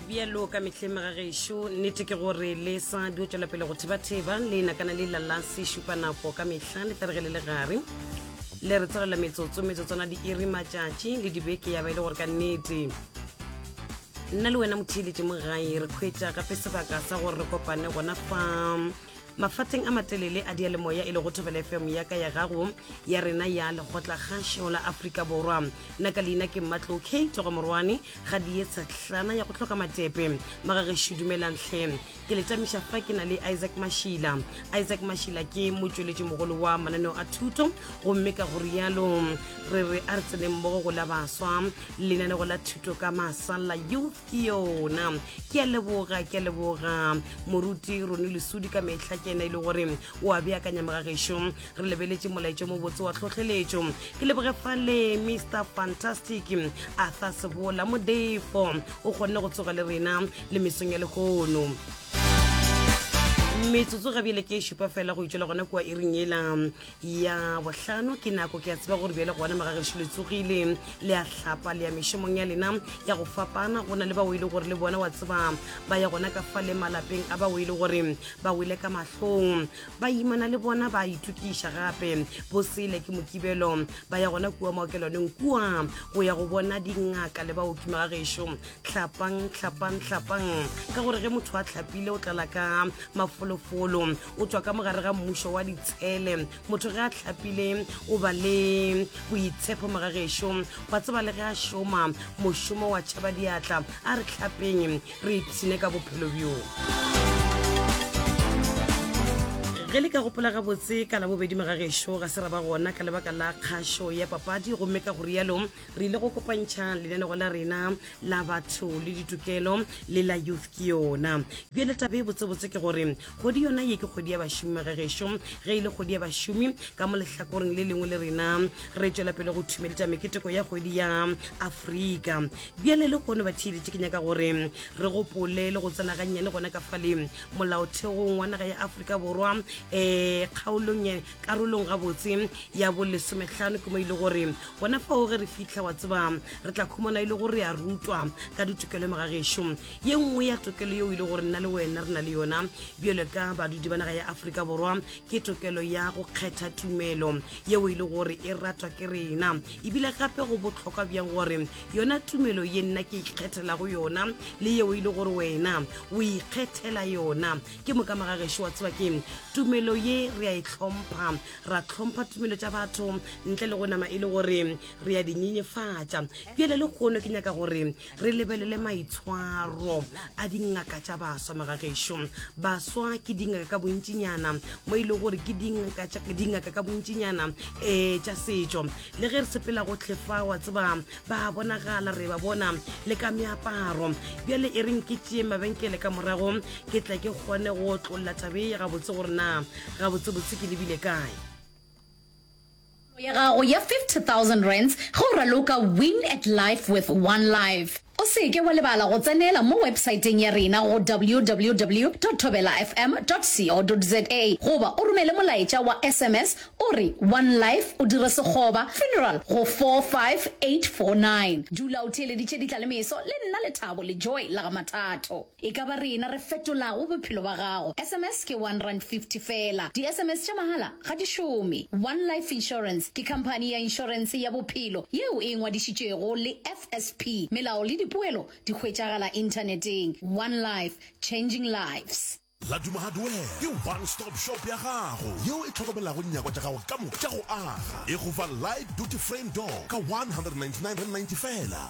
bjalo ka mehleng ga gešo nnete ke gore le sa dio tswela pele go thebatheba le nakana le lala se šupa nako ka mehla le tla re ge le le gare le re tsegelela metsotso metsotswana di iri matšatši le dibeke ya ba e le gore ka nnete nna le wena motheeletše mo gae re kgwetša gape sebaka sa gore re kopane gona fa Mafateng a matelele a dialemoya e lego Thobela FM ya ka ya gago ya rena ya lekgotla kgašo la Afrika Borwa. Nna ka leina ke Mmatlo K Togo Morwane ga di etsa tlana ya go hloka matepe. Magagešu dumelang hle. Ke le tamiša fa ke na le Isaac Mashila. Isaac Mashila ke motšweletši mogolo wa mananeo a thuto gomme ka go rialo re re a re tseneng mmogo go la baswa lenanego la thuto ka masala youth ke yona ke a leboga ke a leboga moruti rone lesudi ka metlha ke ena e le gore o a beakanya mogageso re lebeletse molaetso mo botse wa tlhotlheletso ke leboge fale mr fantastic a tha sebola modefo o kgonne go tsoga le rena le mesong ya legono metsotso ga bjele ke e šupa fela go itšwela gona kua e ring ela ya bohlano ke nako ke a tseba gore bjale gona magagešo le tsogile le a hlapa le ya mešomong ya lena ya go fapana go na le bao e le gore le bona wa tseba ba ya gona ka fa le malapeng a bao e le gore ba wele ka mahlong ba imana le bona ba itokiša gape bo sele ke mokibelo ba ya gona kua maokelwaneng kua go ya go bona dingaka le baoki magagešo tlhapang tlhapang tlhapang ka gore ge motho a tlhapile o tlala ka mafolofolo o tswa ka mogare ga mmušo wa ditshele motho ge a tlhapile o ba le boitshepo mogagešo wa tseba le ge a šoma mošomo wa tšhaba diatla a re tlhapeng re ipshine ka bophelo bjo ge le ka gopola gabotse ka labobedi mogagešo ga se ra ba gona ka lebaka la kgašo ya papadi gomme ka go rialo re ile go kopantšha lenanego la rena la batho le ditokelo le la youth ke yona bjale tabe botsebotse ke gore Kgwedi yona ye ke kgwedi ya bašomi magegešo. Ge e le kgwedi ya bašomi, ka mo lehlakoreng le lengwe le rena re tšwela pele go thumeletša meketeko ya kgwedi ya Afrika. Bjale le kgono ba theeletše ke nyaka gore re gopole le go tsena gannyane gona ka fale molaotheong wa naga ya Afrika Borwa um eh, kgaolong eh, karolong gabotse ya bolesomehlano ke mo e le gore gona fao ge re fitlha wa tseba re tla khumana e le gore re a rutwa ka ditokelo magagešo ye nngwe ya tokelo yeo e le gore nna le wena re na le yona bjalo ka badudi ba naga ya aforika borwa ke tokelo ya go kgetha tumelo yeo e le gore e ratwa ke rena ebile gape go botlhokwa bjang gore yona tumelo ye nna ke ikgethelago yona le yeo e le gore wena o ikgethela yona ke moka magagešo wa tseba ke tumelo ye re a e tlhompha ra tlhompha tumelo tša batho ntle le go nama e le gore re ya dinyenyefatša bjale le kgono ke nyaka gore re lebelele maitshwaro a dingaka tša baswa magagešo baswa ke dingaka ka bontšinyana mo e le gore ke dingaka ka bontšinyana um eh, tša setšo le ge re sepela go tlhefa wa tseba ba bonagala re ba bona le ka meaparo bjale e reng ke tšee mabenkele ka morago ke tla ke kgone go tlolla tabee gabotse gore na gabotsebotse ke lebile kae Tirelo ya gago ya R50,000 ge o raloka Win at Life with One Life. O se ke wa lebala go tsenela mo websaeteng ya rena go www.thobelafm.co.za goba o romele molaetša wa sms o re One Life o dire sekgoba, funeral, go 45849. Dula o theeleditše ditla le meso le nna Lethabo Lejoe la ga Mathato. E ka ba rena re fetolago bophelo ba gago. SMS ke one rand fifty fela. Di-SMS tša mahala ga di šome. One Life Insurance ke khamphani ya inšorense ya bophelo yeo e ngwadišitšwego le FSP. Melao le dipoelo di hwetšagala inthaneteng. One Life, changing lives. Laduma Hardware ke one stop shop ya gago yeo e tlhokomelago nyakwa tša gago ka moka tša go aga. E go fa light duty frame door ka one hundred and ninety nine rand ninety fela.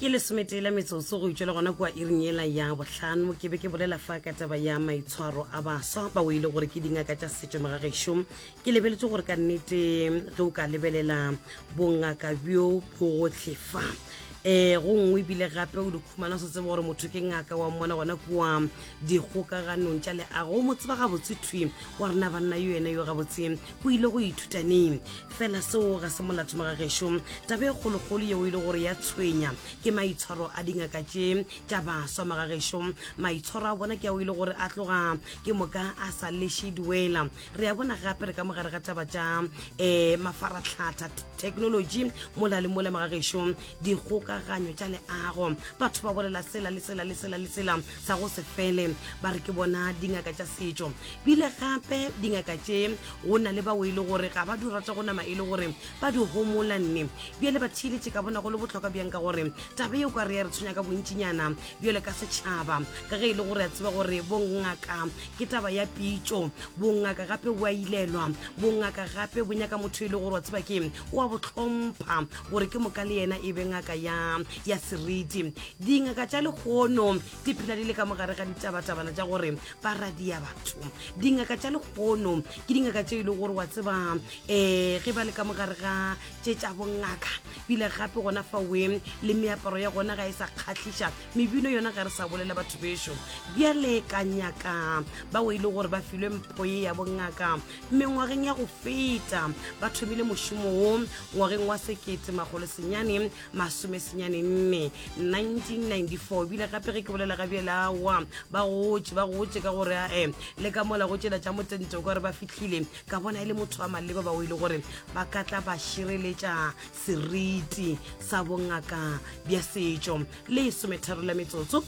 ke lesometee la metsotso go itšwa le gona kua iring ela ya bohlano ke be ke bolela fa ka taba ya maitshwaro a baswa ba o ile gore ke dingaka tša setšo magagešo ke lebeletse gore ka nnete ge o ka lebelela bongaka bjo bogotlhe fa um go nngwe ebile gape o dikhumana se tseba gore motho ke ngaka wa mmona gona kua dikgokaganong tša leago o mo tseba gabotse thwi wa rena banna yo ene yo gabotse o ile go ithuta neng fela seo ga se molato mo ga gešo taba e kgolokgolo yeo e le gore ya tshwenya ke maitshwaro a dingaka tše tša baswa mo ga gešo maitshwaro a bona ke ao e le gore a tloga ke moka a sa leše duela re ya bona gape re ka mogare ga taba tša um mafaratlhatha technology mola le mola mo ga gešo dikgokaganyo tša leago batho ba bolela sela le sela le sela le sela sa go se fele ba re ke bona dingaka tša setšo bile gape dingaka tše go na le bao e le gore ga ba di rata go nama e le gore ba di homola nne bjale ba theeletše ka bona go le botlhokwa bjang ka gore taba eo ka re ya re tshwenya ka bontšinyana bjale ka setšhaba ka ge e le gore a tseba gore bongaka ke taba ya pitšo bongaka gape bo a ilelwa bongaka gape bo nyaka motho e le gore wa tseba ke wa botlhompha gore ke moka le yena e be ngaka ya seriti dingaka tša lehono di phela di le ka mogare ga ditabatabana tša gore ba radia batho dingaka tša lehono ke dingaka tše e le gore wa tseba um ge ba le ka mogare ga tše tša bongaka bile gape gona fa weng le meaparo ya gona ga e sa kgatlhiša mebino yona ga re sa bolela batho bešo bjale ka nyaka bao e le gore ba filwe mpho ye ya bongaka mengwageng ya go feta ba thomile mošomo wo ngwageng wa sekete magolo senyane masomesenyane nne 1994 bile gape ge ke bolela ga bjelawa ba gotše ba gotše ka gore ae le ka mola go tšela tša motento ka gore ba fihlile ka bona e le motho wa maleba bao e le gore ba ka tla ba šireletša seriti sa bongaka bja setšo le sometharo la metsotso